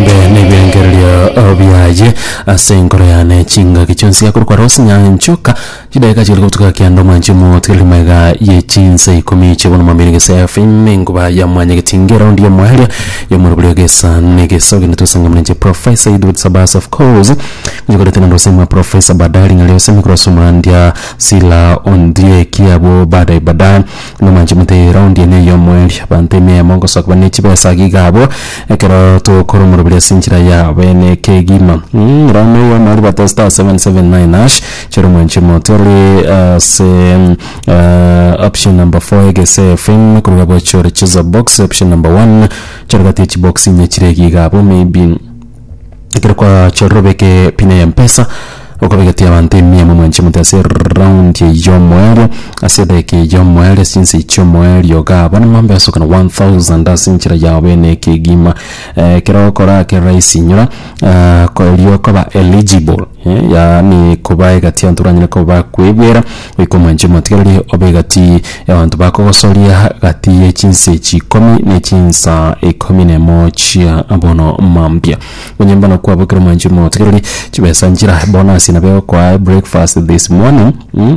Mbe nebirengererio biaye ase enkoro yane chingaki chionsi ya korokora gose nyanchoka chidaeka chiria gotuga kianda omwanche omogotigereri magega ye chinsa ikomi chie bono mambia negesa ya fime enkuba ya mwanya getinge eraundi ya mwaeria ya omoro boria gesa negesa ogende tosangamane inche professor Edward Sabasa of course nyekorete nande gose mwa professor baadaye ring'ana riose nikorwa somandia sila ondieki abwo baadaye baadaye Buna manchimete ya eraundi ene eyomweeri, abanto emia eyemo ngosakuba ne chibesa age iga abwo, ekero tokoromoroberia ase enchera ya abene kegima. Rora na eyomo aria bate *779#, chera omwanchimote ore ase option number four egese FM, korwa iga bochore chooser box option number one, chore gati ya chibox inye chire ege iga abwo maybe. Ekero kwachorire obeke epini eye mpesa okobegetia abanto emia emo mwanche mote ase eround eye yomoerio ase edageka eye yomoerio ase chinsa echi chiomoerio igaa bono mambia osokana 1000 ase enchera yao bene ekegima ekero okora ake rahisi inyora erio okoba eligible. yaani koba egati y'abanto baranyare koba bakwegwera, goika omwanche omotigereri obe egati y'abanto bakogosoria, gati ye chinsa echi ikomi ne chinsa ikomi na emo chia bono mambia. Onye mbono kwaba ekero omwanchi omotigereri, chibesa nchira bono ase nabo egokoa breakfast this morning, mh.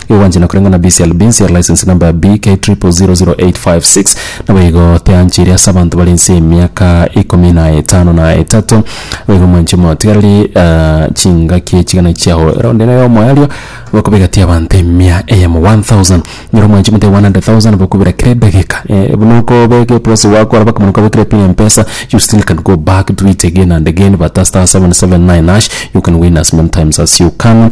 Iwanche na koreng'ana BCLB inse ya license number ya BK000856, naboigo teancheire ase abanto bare inse y'emiaka ikomi na etano na etato. Naboigo mwanche omotigareri chingaki echigana chiao. Ere onde nere omoerio bokobega ti abanto emia eyemo, 1000. Nyora omwanche omote 100,000 bokobera kera edageka. Buna okobeka eposi gwakora baka muna kwabekire pin empesa you still can go back do it again and again but star 779 hash you can win as many times as you can.